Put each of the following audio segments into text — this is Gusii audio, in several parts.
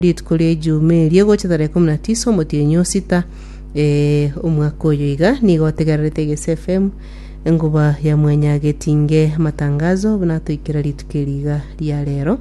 Rituko ria Ejumii erio egocha tarehe ikomi na tisa omotienyi o sita eh, omwaka oyo iga, nigo otegererete Egesi FM enguba ya mwanya getinge amatangazo buna atoikera rituko eri iga ria rero.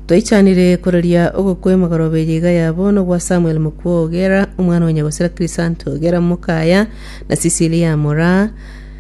Twaichanire koraria ogokwa emegorobe eye iga yabo nogwa Samuel Mokwo Ogera, omwana wa Nyagosera Krisanto Ogera Mokaya na Cecilia Moraa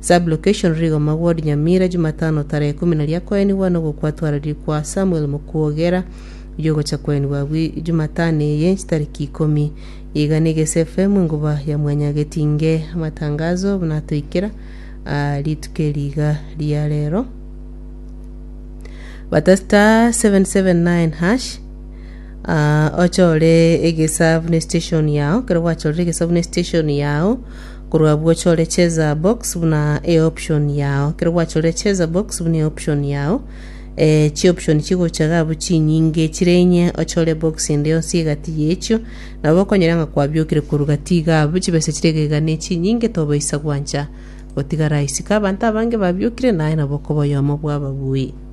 Sub-location, Rigoma Ward Nyamira, Jumatano tarehe ikomi na ria koenigwa nogo kwatwareriri kwa Samuel Mukwogera oyio ogocha koenigwa abwi Jumatano eye chitariki ikomi. Iga nigo ase FM enguba ya Mwanyagetinge amatangazo buna atoikera aa rituko eri iga ria rero. Bata star 779 hash Ah, ochore egesabu ne station yao kero gwachorire egesabu ne station yao Korwa abwo chore cheza box buna eoption yao. Kero gwachorire cheza box buna eoption yao, eh, chioption chigocha iga abwo chinyinge chire inye ochore box ende yonsi egati yechio, nabo okonyora ng'a kwabiokire korwa gati iga abwo chibesa chire iga iga nechinyinge tobaisa gwancha gotigara isiko. Abanto abange babiokire naye nabo okoba oyomo bw'ababui.